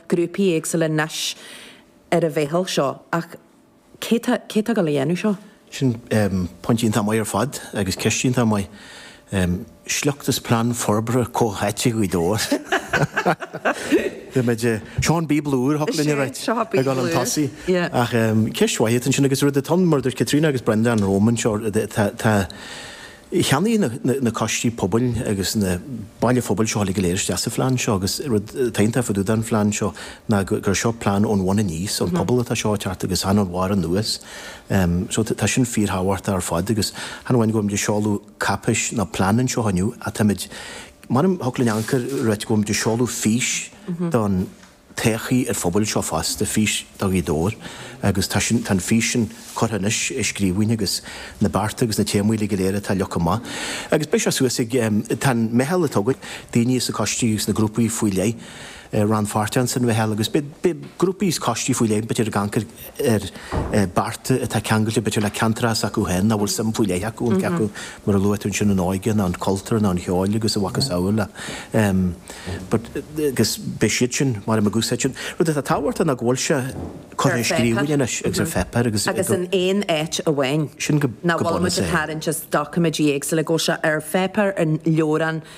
grúpaí éagsúla anois ar an mheitheal seo ach cé tá le déanamh seo? Sin pointí iontach maith ar fad agus ceist iontach maith. Sliocht as plean forbartha comhtháite Ghaoth Dobhair. Beimid, seo an Bíobla úr a dtig linn a ráit ag dul chun tosaigh ach ceist mhaith atá ansin agus rud atá ann mar a dúirt Caitríona agus Breandán romham anseo tá Cheannaigh na coistí pobail agus na baill phobail seo uilig go léir isteach sa phlean seo agus rud atá iontach fadúda an phlean seo ná gur seo plean ón bhun aníos, ón bpobal atá seo ag teacht agus chan ón bharr anuas. So tá sin fíor thábhachtach ar fad agus chan amháin go bhfuimid ag seoladh cáipéis nó plean anseo inniu ach táimid, mar a deirim, thiocfadh linn amharc air a ráit go bhfuimid ag seoladh fís don. Todhchaí an phobail seo fosta fís do Ghaoth Dobhair agus tá sin, tá an fís sin curtha anois i scríbhinn agus na bearta agus na téamaí uilig go léir atá leo chomh maith. Agus beidh sé suas ag, tá an meitheal a toghadh, daoine as na coistí agus na grúpaí faoi leith rannpháirteach ins an mheitheal agus beidh grúpaí is coistí faoi leith, b'fhéidir ag amharc, ar bearta atá ceangailte b'fhéidir le ceantar s'acu féin, nó a bhfuil suim faoi leith acu iontu, mar a luaigh tú ansin, an óige nó an cultúr nó an ceol agus a mhacasamhail. But agus beidh siad sin, mar a deirim ag úsáid sin. Rud atá tábhachtach ná go bhfuil sé curtha i scríbhinn anois agus ar pháipéar agus go. Agus in aon áit amháin. Sin go. Nach bhfuil muid ag tarraingt as doiciméidí éagsúla, go bhfuil sé ar pháipéar, in leabhrán,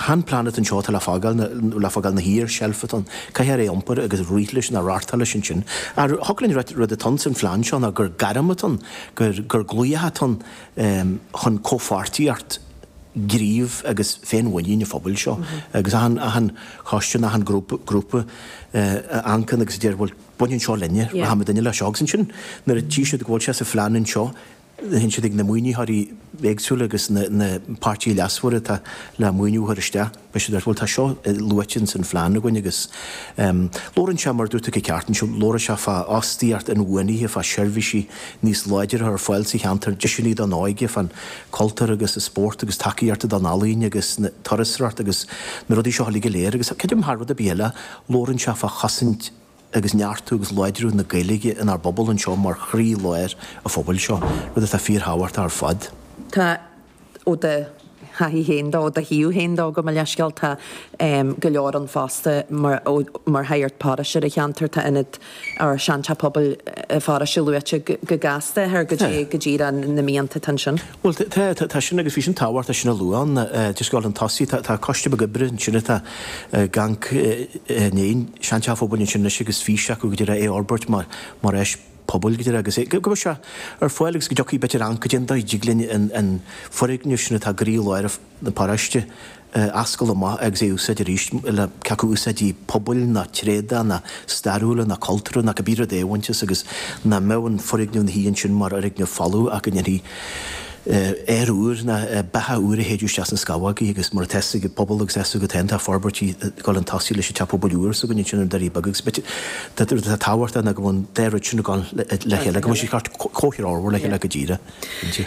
Chan plean atá anseo atá le fágáil na, le fágáil ina shuí ar seilf atá ann, caithfear é a iompar agus rith leis nó reáchtáil leis ansin. Thiocfadh linn rud, rud atá sa phlean seo ná gur gairm atá ann, gur, gur glaoch atá ann chun comhpháirtíocht gnímh agus féinmhuinín an phobail seo. Agus achan, achan choiste, achan grúpa, grúpa a amharcann agus a deir, bhuel, baineann seo linne, rachaidh muidinne leis seo agus ansin nuair a tchí siad go bhfuil sé sa phlean anseo, Théann siad ag na maoinitheoirí éagsúla agus na páirtithe leasmhara atá le maoiniú a chur isteach. Deir siad, bhuel, tá seo luaite ins an phlean againn agus labhrann sé, mar dúirt tú go ceart anseo, labhrann sé fá fhostaíocht inbhuanaithe, fá seirbhísí níos láidre a chur ar fáil sa cheantar, deiseanna don óige, fán cultúr agus an spórt agus tacaíochta don ealaín agus na turasóireacht agus na rudaí seo uilig go léir agus creidim thar rud ar bith eile, labhrann sé fá chosaint agus neartú agus láidriú na Gaeilge inár bpobal anseo mar chroí-láir an phobail seo, rud atá fíor-thábhachtach ar fad. Tá, ó do thaithí féin de, ó do thaobh féin de, gabh mo leithscéal, tá go leor ann fosta mar, ó, mar shagart paróiste ar an cheantar, tá ionad ár sean-Teach Pobail paróiste luaite go gasta thoir cad é, cad é na mianta atá ansin. Bhuel, tá, tá sin agus bhí sin tábhachtach, tá sin a lua ann. Just ag dul chun tosaigh, tá, tá coiste beag oibre ansin atá ag amharc i ndiaidh, Seanteach an Phobail ansin anois agus fís acu, go deimhin, é a fhorbairt mar, mar áis pobail, go deimhin, agus é, go mbeidh sé ar fáil agus go dtiocfaidh b'fhéidir amharc cad é an dóigh a dtig linn an, an foirgneamh sin atá ag croílár an. na paróiste, a oscailt amach agus é a úsáid arís le cé acu úsáidí pobail nó tréada nó stairiúla nó cultúrtha nó cibé rud é a bhaint as agus ná mbeadh an foirgneamh ina shuí ansin mar fhoirgneamh folamh ach go ndéanfaí aer úr ná beatha úr a shéideadh isteach sna scamhógaí agus mar atá 's ag an bpobal agus atá 's agat féin tá forbairtí ag dul chun tosaigh leis an teach pobail úr s'againne ansin i nDoirí Beaga agus beidh tá rud atá tábhachtach ná go bhfuil an dá rud sin ag dul le chéile agus tá sé ar chomhthreo le chéile go díreach.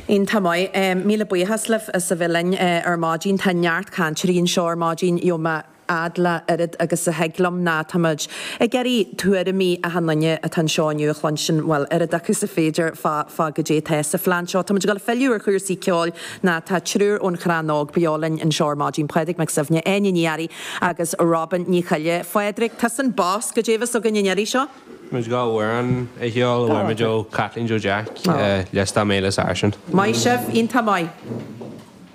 Iontach maith. Míle buíochas daoibh as a bheith linn ar maidin. Tá neart cainteoirí anseo ar maidin. Gheobhaidh mé fhad le oiread agus a thig liom nó táimid ag iarraidh tuairimí achan duine atá anseo inniu a chluinstin, bhuel, oiread acu is is féidir fá fá goidé atá sa phlean seo. Táimid ag dul a philleadh ar chúrsaí ceoil nó tá triúr ón Chrann Óg beo linn anseo ar maidin, Pádraig Mac Suibhne, Áine Ní Fhearraigh agus Robyn Ní Choille. Phádraig, túsa an boss, goidé a bheas againn an iarraidh seo. muid ag gabháil amhrán a cheol a fuair muid ó Kathleen Joe Jeaic, Liostáil mé le sáirsint. Maith sibh, iontach maith.